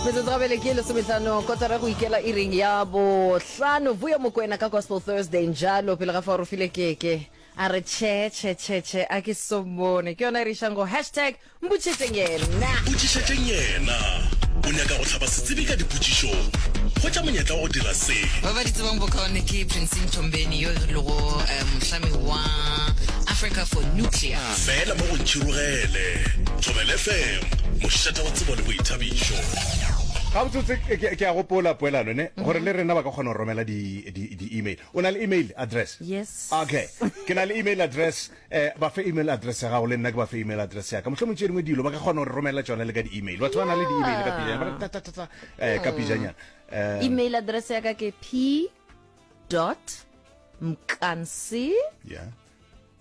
metsotso gabele ke lesometlano kotara go ikela e reng ya bohlano vuya mokwena ka gospel thursday njalo pele ga fa o file keke a re che che che che a ke sombone ke yona e re išang go hashtag mpotšhetšeng yena potšišetšeng yena o nyaka go hlaba setsebi ka dipotšišong hwetša monyetla wa go dira se ba ba di tsebang bokaone ke princing tombeni yo e lego um, mohlami wa africa for nuclear Fela mo go Ntšhirogele. Thobela FM, mošate wa tsebo le boithabišo. Gabotsotse ke, ke, ke a gopola poelano ne mhm. gore le rena ba ka kgona go romela di-email di, di o na le email address yes okay ke na le email address eh ba fe email address ya gago le nna ke ba fe email address ya ka motlho motse dingwe dilo ba ka kgona go romela tsone le ka di-email batho ba na le di-email ka pijanyana ta ta ta eh ka pijanyana eh, email address ya ka ke p dot mkansi yeah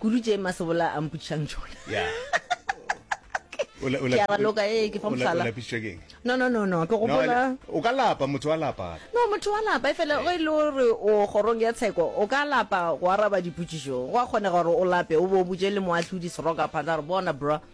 kudu tše masebola a mpotšišang tšona ke a raloka ee ke fa mohlala no no no no ke gopola o ka lapa motho wa lapa no motho wa lapa e fela go e le gore o kgorong ya tsheko o ka lapa go araba dipotšišo go a kgonega gore o lape o bo o botše le moahlodi seroka phata gore bona bro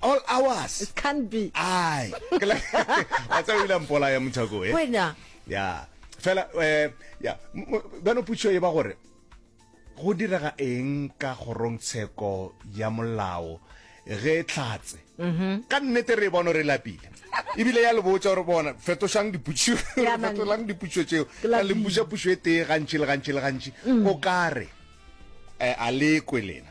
all hours it can't be ai ke la a tsa o ile mpola ya mothako e wena ya fela eh ya bano putšo e ba gore go direga eng ka gorong tsheko ya molao ge e tlatse mhm. ka nnete re e bona re lapile ebile ya le botsa gore bona fetošang diputšo fetolang diputšo tseo a le mpuša pušo e tee gantši le gantši le gantši mm. o kare eh, a lekwe lena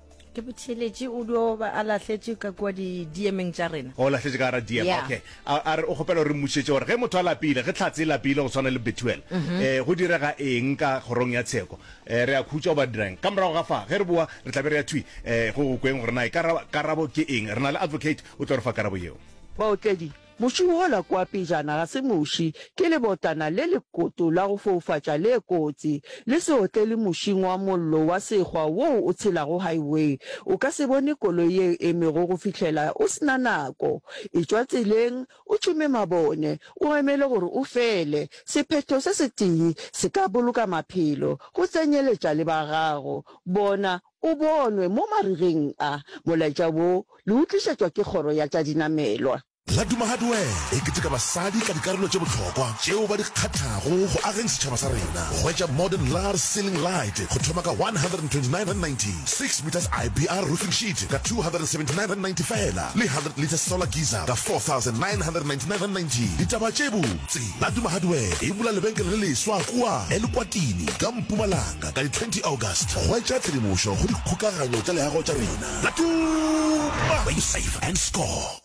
ke botheletše o dio ba a lahletše ka kua diemeng tša rena o lahletše ka gara diem okay a re o kgopela gore mmušetše gore ge motho a lapile ge tlhatse e lapile go tshwana le betuel um mhm. go direga eng ka kgorong ya tsheko um re a khutšwa o ba dirang ka morago ga fa ge re boa re tlabe re ya thwi um go go kweng gore na e karabo ke eng re na le advocate o tlo re fa karabo yeo baotledi Muši wola kua pejana ga se muši, ke lebotlana le lekoto la go foufatša le kotsi. Le se otlele mušing wa mollo wa sekgwa woo o tshelago highway. O ka se bone koloi ye e emego go fihlela o se na nako. Etšwa tseleng, o tšhume mabone, o emele gore o fele. Sephetho se setee se ka boloka maphelo, go tsenyeletša le ba gago. Bona, o bonwe mo marigeng a. Molaetša wo le o tlišetšwa ke Kgoro ya tša Dinamelwa. La Duma Hardware e keteka basadi ka dikarolo tše bohlokwa tšeo ba di kgathago go ageng setšhaba sa rena. Hwetša Modern Lar Ceiling Light go thoma ka R129.90, Six Metres IBR Roofing Sheet ka R279.90 fela le Hundred Litres Solar Geyser ka R4,999.90. Ditaba tše botse, La Duma Hardware e bula lebenkele le leswa kua Elukwatini ka Mpumalanga. Ka di 20 August, hwetša tshedimošo go dikgokaganyo tša leago tša rena la Tuma! Where you save and score.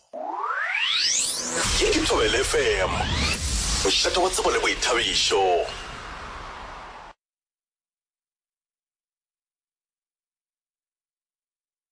Ye ke Thobela FM, mošate wa tsebo le boithabišo.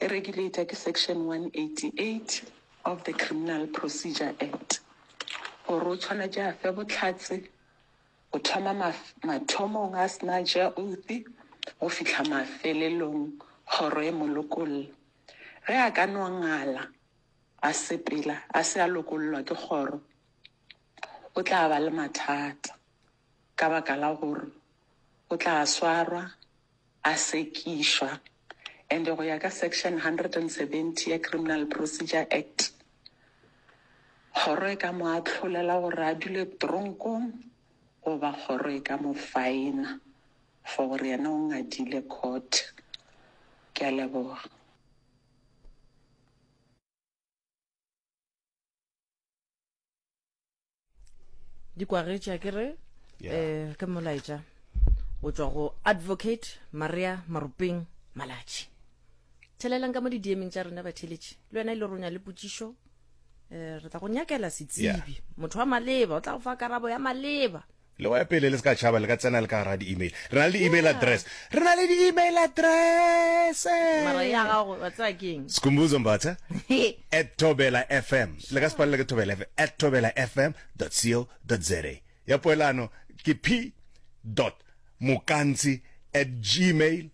e regulata ke Section 188 of the Criminal Procedure Act gore o tshwanetše a fe bohlatse go thoma mathomong a se na a tšea oath go fihla mafelelong kgoro e mo lokolla. Ge a ka no ngala a sepela a se a lokollwa ke kgoro, o tla ba le mathata ka baka la gore o tla swarwa, a sekišwa and go ya ka Section 170 ya Criminal Procedure Act, kgoro e ka mo ahlolela gore a dule tronkong goba kgoro e ka mo faena for gore yena o ngadile court. Ke a leboga. dikwagetše a ke re um ke molaetša o tswa go advocate maria maropeng malatši thelelang ka mo didiemeng tša rena batheletši le wena e le ronya le potsišo um re tla go nyakela setsibi motho wa maleba o tla go fa karabo ya maleba Le wa pele le se ka tšhaba le ka tsena le ka gara di-email. Re na le di-email address. Re na le di-email address. Mara ya gago wa tsaya ke eng? Skhumbuzo Mbatha at Thobela FM. Le ka se palelwe ke Thobela FM at thobelafm.co.za. Ya poelano ke p. Mokantsi at gmail.